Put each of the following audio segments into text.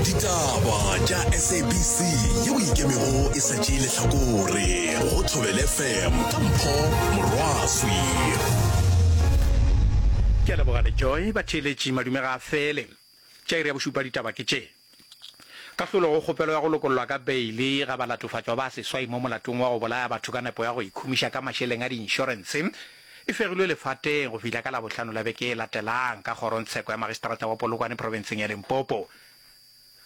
ditaba tša sabc yeo e ikemego e sa tšee lehlakore go thobele fm ka mpho morwaswi ke a leboga le joy batheeletši madume ga a fele tša iri ya bošupa ditaba ke tše kahlolo go kgopelo ya go lokollwa ka beile ga balatofatšwa ba seswai mo molatong wa go bolaya batho ka nepo ya go ikhumiša ka mašeleng a diinšorense e fegilwe lefateng go fihla ka Labohlano la beke e latelang ka kgorongtsheko ya magistrata wa Polokwane profenseng ya Limpopo.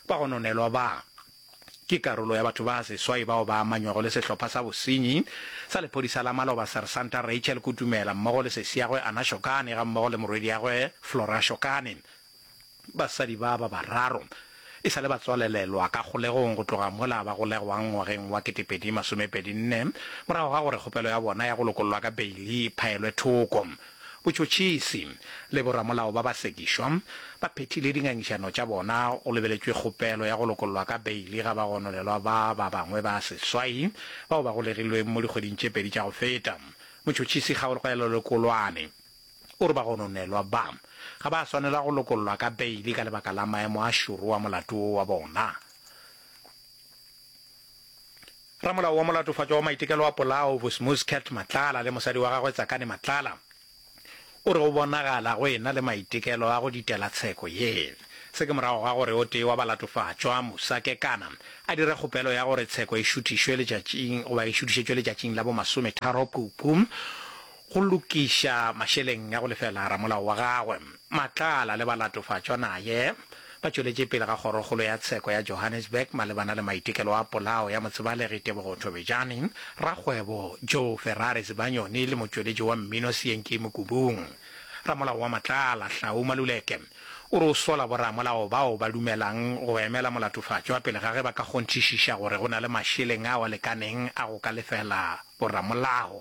Ba gononelwa ba ke karolo ya batho ba seswai bao ba amanywago le sehlopha sa bosenyi sa lephodisa la maloba Sersanta Rachel Kutumela mmogo le sesiagwe Anna Shokane gammogo le morwediagwe Flora Shokane. Basadi ba ba bararo e sa le ba tswalelelwa ka kgolegong go tloga mola ba golegwang ngwageng wa 2024 morago ga gore kgopelo ya bona ya go lokollwa ka beili e phaelwe thoko. Botšhotšhisi le boramolao ba ba sekišwa ba phethile dingangišano tša bona go lebeletšwe kgopelo ya go lokollwa ka beili ga bagononelwa ba ba bangwe ba seswai bao ba golegilweng mo dikgweding tše pedi tša go feta. Motšhotšhisi Kgaolgoelo Lekolwane. O re bagononelwa ba ga ba a swanela go lokollwa ka beile ka lebaka la maemo a šoro wa molato wo wa bona. Ramolao wa Molatofatšwa wa Maitekelo a Polao, Vusimuscat Matlala le mosadi wa gagwe Tsakani Matlala, o re go bonagala go ena le maitekelo a go ditela tsheko ye. Se ke morago ga gore o tee wa balatofatšwa, Musa Kekana, a dire kgopelo ya gore tsheko e šuthišwe letšatšing goba e šuthišetšwe letšatšing la bo masometharo Phupu, go lokiša mašeleng a go lefela ramolao wa gagwe. Matlala le balatofatšwa naye ba tšweletše pele ga Kgorokgolo ya Tsheko ya Johannesburg malebana le maitekelo a polao ya motsebalegi Tebogo Thobejane, rakgwebo Joe Ferrari Zibanyoni le motšweletši wa mmino Sienkei Mokubung. Ramolao wa Matlala, Hlau Maluleke, o re o sola boramolao bao ba dumelang go emela molatofatšwa pele ga ge ba ka kgonthišiša gore go na le mašeleng ao a lekaneng a go ka lefela boramolao.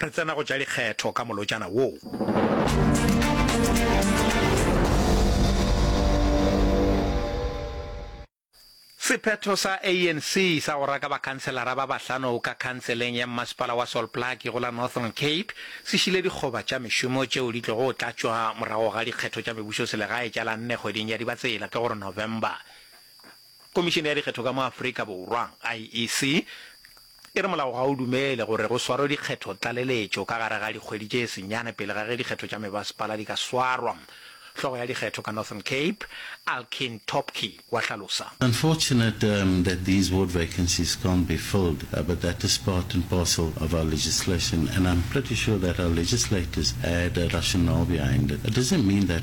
Re tsena go tša dikgetho ka molotšana woo. Sephetho sa ANC sa go raka bakhanselara ba bahlano ka khanseleng ya mmasepala wa Solplaatje go la Northern Cape se šile dikgoba tša mešomo tšeo di tlogo tlatšwa morago ga dikgetho tša mebušoselegae tša la nne kgweding ya Dibatsela, ke go re November. Komišene ya Dikgetho ka mo Afrika Borwa, IEC, e re molao ga o dumele gore go swarwe dikgetho tlaleletšo ka gare ga dikgwedi tše senyane pele ga ge dikgetho tša mebasepala di ka swarwa. Hlogo ya dikgetho ka Northern Cape, Alkeen Topke, wa hlalosa. Unfortunate um that these ward vacancies can't be filled uh but that is part and parcel of our legislation and I'm pretty sure that our legislators had a rationale behind it. It doesn't mean that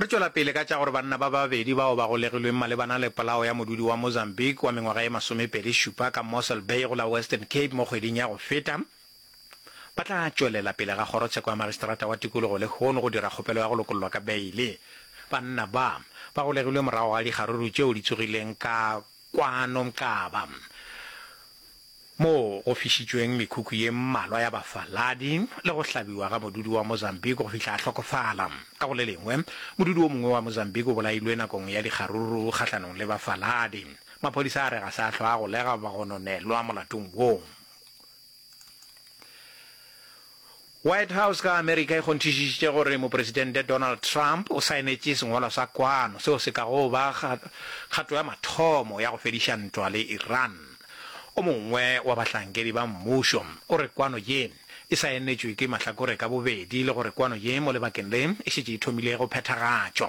Re tšwela pele ka tša gore banna ba babedi bao ba golegilweng malebana le polao ya modudi wa Mozambique wa mengwaga ye masomepedi šupa ka Mossel Bay go la Western Cape mo kgweding ya go feta ba tla tšwelela pele ga kgorotsheko ya magistrata wa tikologo lehono go dira kgopelo ya go lokollwa ka beile. Banna ba ba golegilwe morago ga dikgaruru tšeo di tsogileng ka kwano Mqaba. moo go fišitšweng mekhukhu ye mmalwa ya bafaladi le go hlabiwa ga modudi wa Mozambique go fihla a hlokofala. Ka go le lengwe, modudi o mongwe wa Mozambique o bolailwe nakong ya dikgaruru kgahlanong le bafaladi. Maphodisa a re ga se a hlwa a golega goba go nonelwa molatong woo. White House ka Amerika e kgonthišišitše gore Mopresidente Donald Trump o saenetše sengwalwa sa kwano seo se kago ba kgato ya mathomo ya go fediša ntwa le Iran. O mongwe wa bahlankedi ba mmušo o re kwano ye e saenetšwe ke mahlakore ka bobedi le gore kwano ye mo lebakeng le e šetše e thomile go phethagatšwa.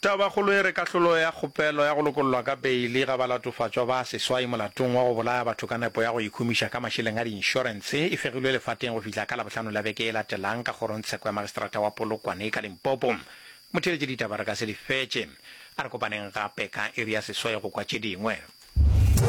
Tabakgolo e re kahlolo ya kgopelo ya go lokollwa ka beili ga balatofatšwa ba seswai molatong wa go bolaya batho ka nepo ya go ikhumiša ka mašeleng a diinšorense e fegilwe lefateng go fihla ka Labohlano la beke e latelang ka kgorongtsheko ya Magistrata wa Polokwane ka Limpopo. Motheeletši ditaba re ka se di fetše. A re kopaneng gape ka iri ya seswai go kwa tše dingwe.